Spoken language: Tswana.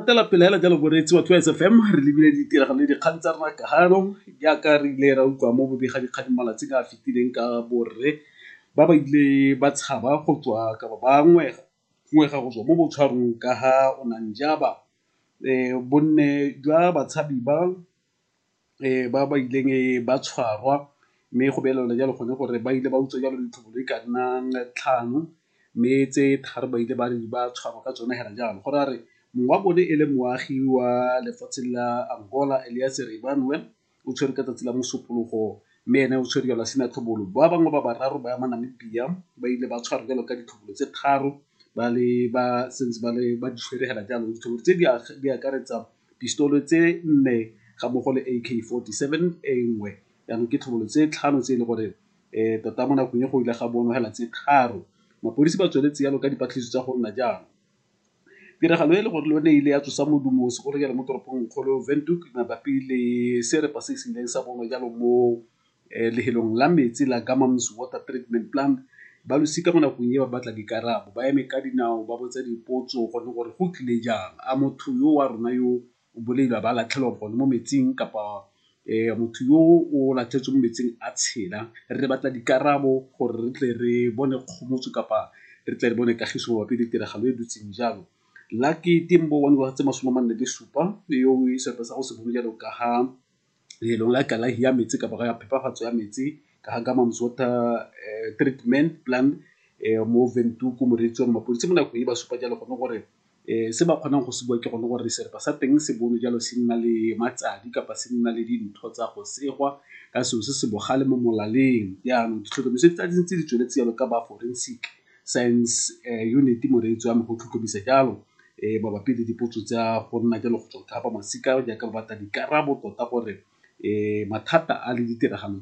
tela pele hela jalo boreetsi wa twice fm re lebile ditiragalo le dikgang tsa rona kagano jaaka re ile ra utlwa mo bobega dikgang malatsi ka a fetileng ka borre ba ba ile ba tshaba go tswa kapa ba ngwega ngwega go tswa mo botshwarong ka ga onanjaba um bonne jwa batshabi ba ba ba ileng ba tshwarwa mme go beelelwa jalo gone gore ba ile ba utswa jalo ditlhopolo di ka nnang tlhano mme tse thari ba ile ba re ba tshwarwa ka tsone fela jalo. Go ra re mongwe wa bone e le moagi wa lefatshe la Angola o tshwerwe ka tsatsi la Mosupologo mme ene o tshwerwe jalo a sena tlhobolo. Ba bangwe ba bararo ba ba Namibia ba ile ba tshwarwa jalo ka ditlhopolo tse tharo ba le ba santse ba le ba di tshwere fela jalo ditlhopolo tse di akaretsa Dipistolo tse nne ga mmogo le AK-47 e nngwe jaanong ke tlhobolo tse tlhano tse e le gore tota mo nakong e go ile ga bonwa hela tse tharo. Mapodisi ba tsweletse yalo ka dipatlisiso tsa go nna jaana. Tiragalo e le gore le yone e ile ya tsosa modumo o segolojalo mo toropong kgolo Windhoek mabapi le serepa se se ileng sa bonwa jalo mo Lehelong la metsi la Gamam's Water Treatment Plant, balosika mo nakong e ba batla dikarabo, ba eme ka dinao ba botsa dipotso gone gore go tlile jang. A motho yo wa rona yo o bolailwe a ba latlhelwa gone mo metsing kapa motho yo o latlhetswe mo metsing a tshela? Re batla dikarabo gore re tle re bone kgomotso kapa re tle re bone kagiso mabapi le tiragalo e dutseng jalo. Lucky Tembo wa dingwaga tse masome a mane le supa yo o sa go se bone jalo ka ga leelong la kalafi ya metsi kapa ya phepafatso ya metsi ka ga Kamam's Water Treatment Plan mo Windhoek moreetsi wa mapodisi mo nakong e ba supa jalo gone gore se ba kgonang go se bua ke gone gore serapa sa teng se bone jalo se nna le matsadi kapa se nna le dintho tsa go segwa ka selo se se bogale mo molaleng jaanong ditlhotlhomiso tse di tsweletse jalo ka ba forensic. Science Unit moreetsi wa me go tlhotlhomisa jalo mabapi le dipotso tsa go nna jalo go tswa go thapa masika jaaka ba batla dikarabo tota gore mathata a le ditiragalo tse